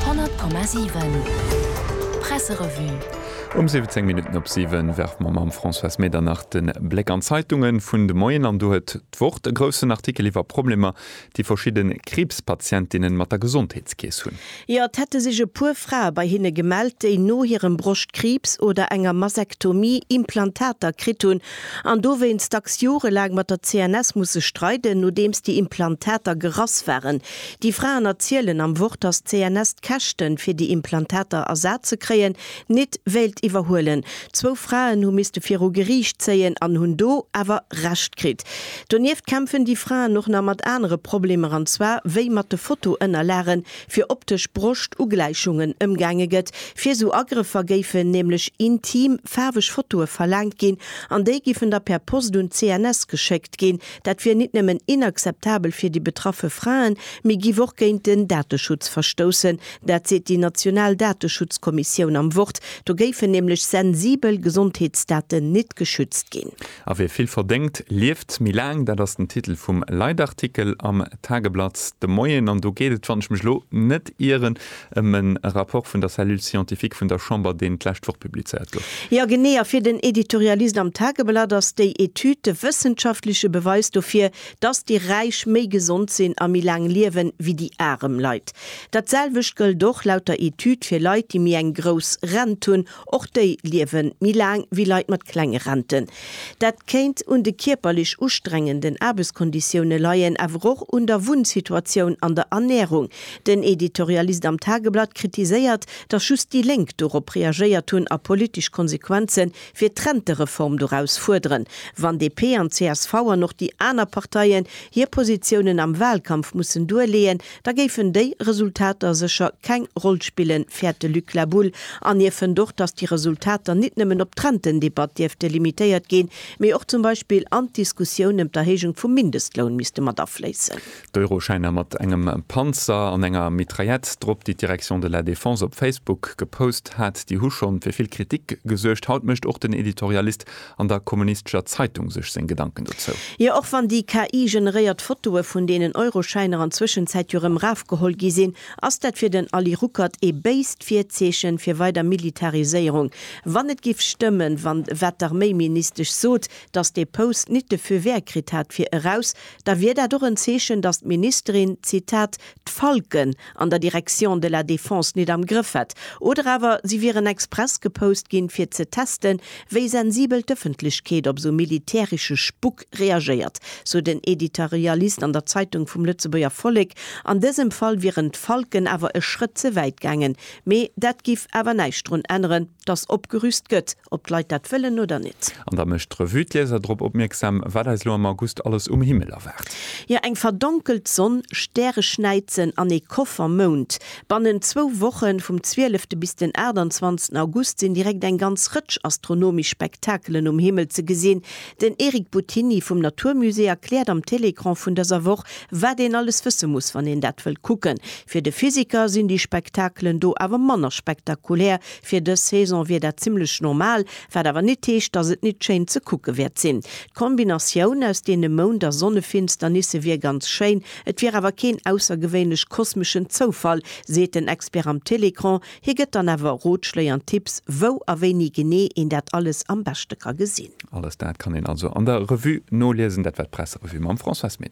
100,7 Presserevue Um 17 Minutten op 7 werfe mer mam Françoise Medernach de Bléck an d'Zeitunge vun de Moien. An do huet d'Wort e groussen Artikel iwwer Problemer, déi verschidde Kriibspatientinnen mat der Gesondheetskeess hunn. Jo, et hätte sech e puer Frae bei hinne gemellt, déi no hirem Broschtkriibs oder enger Masektomie Implantater kritt hunn an dowéinst dacks jorelaang mat der CNS musse streiden, nodeems déi Implantater gerass waren. Déi Fraen erzielen am Wort, dass d'CNS d'Käschten, fir déi Implantater ersat ze kréien, nit wéilt iwwerhuelen. Zwou Fraen hu misste viru Geriicht zéien an hunn do awer Recht kritt. Donieft kämpfen déi Fraen och nach mat anere Problemer, an zwar wéi mat de Fotoënnerlagen fir optesch Broschtugläichungen ëmgaange gëtt. Fir sou Agrëffer géifen nämlech intim, faarweg Fotoe verlaangt ginn an déi giffen da per Post un d'CNS geschéckt ginn. Dat wier nit nëmmen inakzeptabel fir déi betraffe Fraen, mee giff och géint den Dateschutz verstoussen. Dat seet déi national Dateschutzkommissioun am Wort. Do géifen nämlech sensibel Gesondheetsdaten nit geschützt ginn. A wie vill verdéngt, lieft méi laang. Dat ass den Titel vum Leitartikel am Tageblatt de Moien. An do geet et, wann ech mech elo net ieren, Ëm en Rapport vun der Cellule scientifique vun der Chamber, deen d'lescht Woch publizéiert gouf. Jo genee, a fir den Editorialist am Tageblatt ass déi Etüd de wëssenschaftleche Beweis dofir, dass déi Räich méi gesond sinn a méi laang liewen, wéi déi arem Leit. Dat selwecht gëllt och, laut der Etüd, fir Leit, déi méi eng grouss Rent hunn, Och déi liewe méi laang wéi Leit mat klenge Renten. Dat kéint un de kierperlech ustrengenden Aarbechtskonditioune leien, awer och un der Wunnsituatioun an der Ernärung. Den Editorialist am Tageblatt kritiséiert, datt just déi Lénk dorop reagéiert hunn a politesch Konsequenze fir d'Rentereform doraus fuerderen. Wann DP an csv an och déi aner Parteien hir Positiounen am Walkampf mussen duerleeën, da géifen déi Resultater sécher keng Roll spillen, fäert de Luc Labulle. An hie fënnt och, datt déi Resultater nit nëmmen op d'Rentendebatt dierfte limitéiert ginn, mee och zum Beispill an d'Diskussioun ëm d'Erhéijung vum Mindestloun misste mat afléissen. D'Euroschäiner mat engem Panzer an enger Mitraillette drop, déi d'Direction de la Défense op Facebook gepost hat, déi hu schonn fir vill Kritik gesuergt. Haut mécht och den Editorialist an der Kommunistescher Zeitung sech seng Gedanken dozou. Jo, och wann déi KI-generéiert Fotoe vun deenen Euroschäiner an Zwëschenzäit jo rëm rafgeholl gi sinn, ass dat fir den Ali Ruckert ee béist Virzeechen fir weider Militariséierung. Wann et giff stëmmen, wann, wat d'Arméiministesch sot, dass dee Post nit de Feu vert kritt hat fir eraus, da wier dat och en Zeechen, dass d'Ministerin, Zitat, d'Falken an der Direction de la Défense nit am Grëff hätt, oder awer si wieren express gepost ginn, fir ze testen, wéi sensibel d'Ëffentlechkeet op esou militäresche Spuck reagéiert, sou den Editorialist an der Zeitung vum Lëtzebuerger Vollek. An dësem Fall wieren d'Falken awer e Schrëtt ze wäit gaangen, mee dat giff awer näischt drun änneren, Dass opgerüst gëtt, ob d'Leit dat wëllen oder net. An da mécht d'Revue d'Lieser drop opmierksam, wat eis elo am August alles um Himmel erwaart. Jo, eng verdonkelt Sonn, Stäreschnäizen an ee Koffermound. Bannent zwou Woche vum 12 de bis den 28 August sinn direkt eng ganz Rëtsch astronomesch Spektakelen um Himmel ze gesinn, Den Eric Buttini vum Natur Musée erkläert am Télécran vun dëser Woch, wat een alles wësse muss, wann een dat wëllt kucken. Fir de Physiker sinn déi Spektakelen do awer manner spektakulär. Fir dës Saison wier dat zimmlech normal, wat awer nit heescht, dass et nit schéin ze kucke wäert sinn. D'Kombinatioun aus deene Mound a Sonnefinsternisse wier ganz schéin, et wier awer keen aussergewéinlech kosmeschen Zoufall, seet den Expert am Télécran. Hie gëtt dann awer Rotschléi an Tipps, wou a wéini genee een dat alles am beschte ka gesinn. Alles dat kann een also an der Revue noliesen, dat war d'Presserevue mam Françoise Meder.